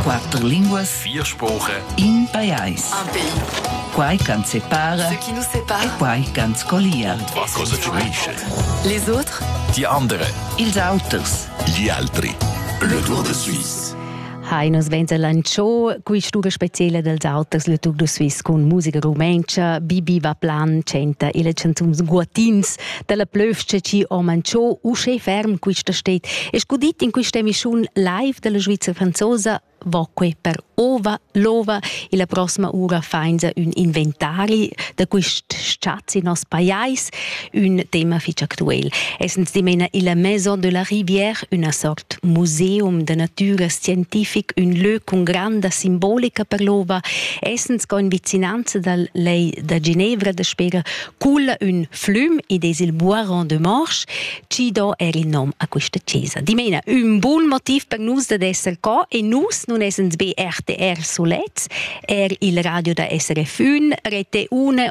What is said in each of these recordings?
Quatter linguas, vier sproche, in pajais. Un pays. Quai ch'ans separa Ce qui nous sépare. e quai ch'ans collia. Was cosa ci unisce? Les autres. Die andere. Ils auters. Gli altri. Le Tour de Suisse. Hai nos venza lanciò quist'uga speciela dels auters Le Tour de Suisse cun musica rumentscha. Bibi va plan, chanta ils chanzuns guatins dalla plövscha chi ho manchò uschè ferm quista sted. Es gudit in quista emissiun live dalla Sviza franzosa vacue per ova, l'ova e la prossima ura fainza ün inventari da quist schatz in nos pajais, ün tema fich actuel. Essens dimena illa Maison de la Rivière, üna sort museum da natüra scientific, ün lö cun granda simbolica per l'ova, essens co in vicinanza dal lei da Ginevra da spera Cul ün flüm id es il Boiron de Morche chi do eir il nom a quista chesa. Dimena, ün bun motiv per nus dad esser co e nus nun essens be RTR sulets, eir il radio da SRF ün, Rete 1,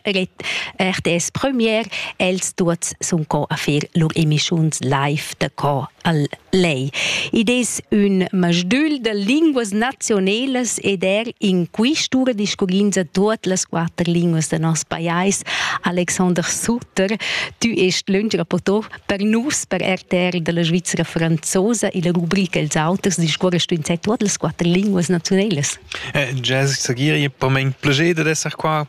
RTS Premier, els tuots sun co a fer lur emischiuns live d'accord al lei. Id es ün masdül da linguas nazionelas ed er in quistura discurrins a tuot las quatter linguas da nos pajais. Alexander Sutter, tu est lönch rapportor per nus, per RTR della Svizzera franzosa e la rubrica Els auters discurres tu in tuot las quatter linguas nazionelas. Eh, Jazz Sagiri, per mein plager da esser qua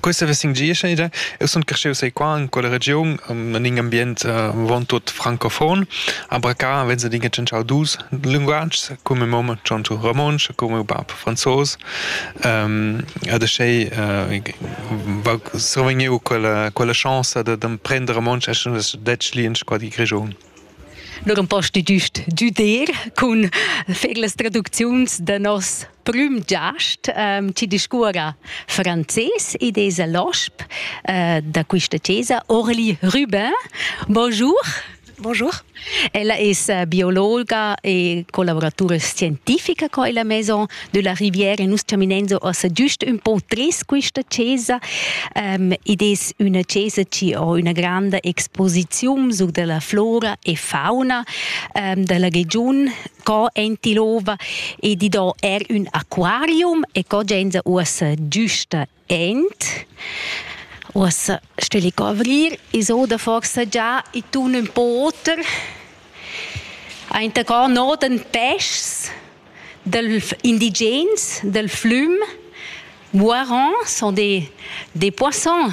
Questa vesin gia ida. Eu sun crescheu sai qua in quella regiun, in in ambient von tut francofon, aber ca venza dinge tschentschau dus linguatgs, come mom chanto romonsch, come bab franzos. Ehm ad schei survegniu quella quella chance da d'emprender romonsch eschendes detg li in squadri grischun. Nur ein posti giust giuder cun fer las traducziuns da nos prüm giast ehm, chi discuorra frances ed es a l'osp eh, da quista chesa, Orli Rubin. Bonjour. Bonjour. Ella es eh, biologa e collaboratura scientifica qua illa maison della riviera e nus terminenzo ossa giust un po tres questa chesa um, ed es üna chesa chi ho üna granda exposiziun su della flora e fauna um, della regiun co Entilova e di do er un aquarium e co genza uossa giusta Ent uossa steli covrir, i's oda forsa già i tun ün po oter. Aint cò nodan peschs dal indigens dal flüm. Moirons sont des, des poissons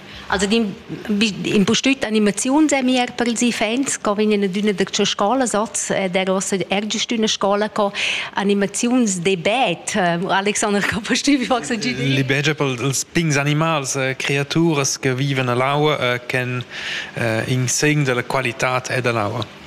Also in bustüt animaziun sei mir per ils fans, co vegn in üna da tua scola soz, äh, der ossa ergest üna scola co animaziuns de bed. Äh, Alexander, co bustübi fax Le bege per els pigns animals, äh, creaturas che viven all'aua, äh, chen äh, in segn della qualità e dell'aua.